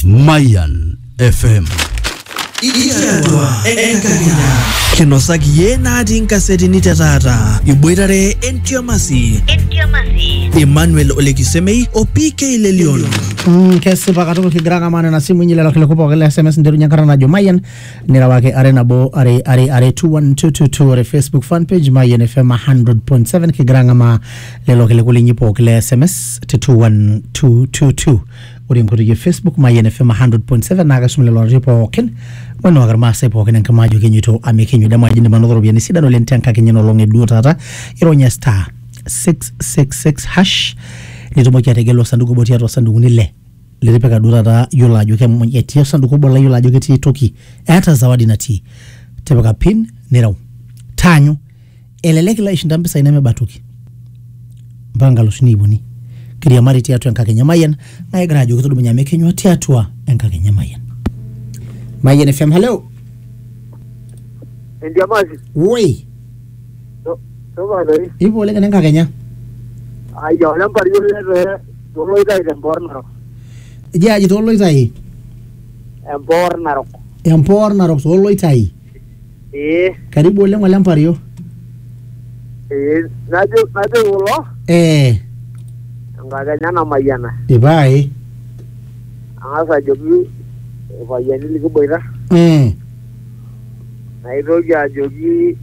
Mayan FM. Ikiatua enkakenya. Kinosaki iye natii nkasetini te taata. Iboitare entiamasi. Emmanuel Olekisemei o PK Lelion. Mm, kesipa katukul kigira ng'amaa nena simuinyi lelo kiliku pooki le sms nterunye enkata najo mayian nirewaki are nabo are are are 21222 ore facebook fan page mayian fm 100.7 kigira ng'amaa lelo kiliku linyi pooki le sms te 21222 ore enkoitoi e facebook mayian fm 100.7 naa kaisum lelo ororei pookin moinuaki irmaasai pookin enkima ajo kenyito amekenyu dama aji indim anoto iropiyiani sidan oleng tenkakenya nolong eduo taata ironya star 666 hash nitumoki ategelu osanduku obo tiatua osandukuni le litipika duo taata yiolo ajo kemuny etii osanduku obo la yiolo ajo ketii toki eeta zawadi natii tipika pin nireu taanyu Elelek ilo aishinda mpisai nemeba toki mpaka nkalusuni iip uni kiriamari tiatua enkakenya emayian naa kigira ajoki tudumunye amu ekenyua tiatua enkakenya emayian mayian fm halo Endiamasi. woi Topa doi. ipo oleng ene nkakenya Ayia ole mpario lete toloitai tempoor narok. eji aji tooloitai Empoor narok. empoor narok tooloitai ee karibu oleng ole mpario ee najo najo kulo ee enkakenya namayiana ipae ang'as ajoki irpayiani likiboita ee naitoki ajoki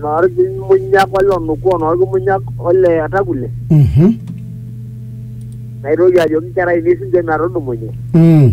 noorkimunyak ole onukuo noorkimunyak ole atakule mhm naitoki ajoki inkera ainei sinche metudumunye mm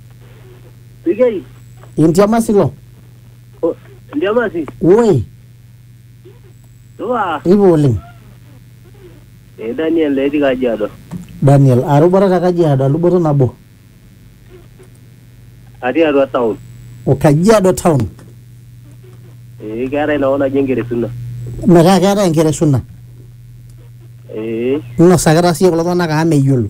Sikei. Intiama silo. O, Ndiama si. Woi, Supa. ipa oleng. Eh, Daniel etii Kajiado. Daniel, arubata te Kajiado, aluboto nabo. Atii atua town. O Kajiado town. Eh, keetae inakop naji Enkeresuna. Metaa keetae enkeresuna. Eh. Inosakita siyie kulo tung'anak amu meyiolo.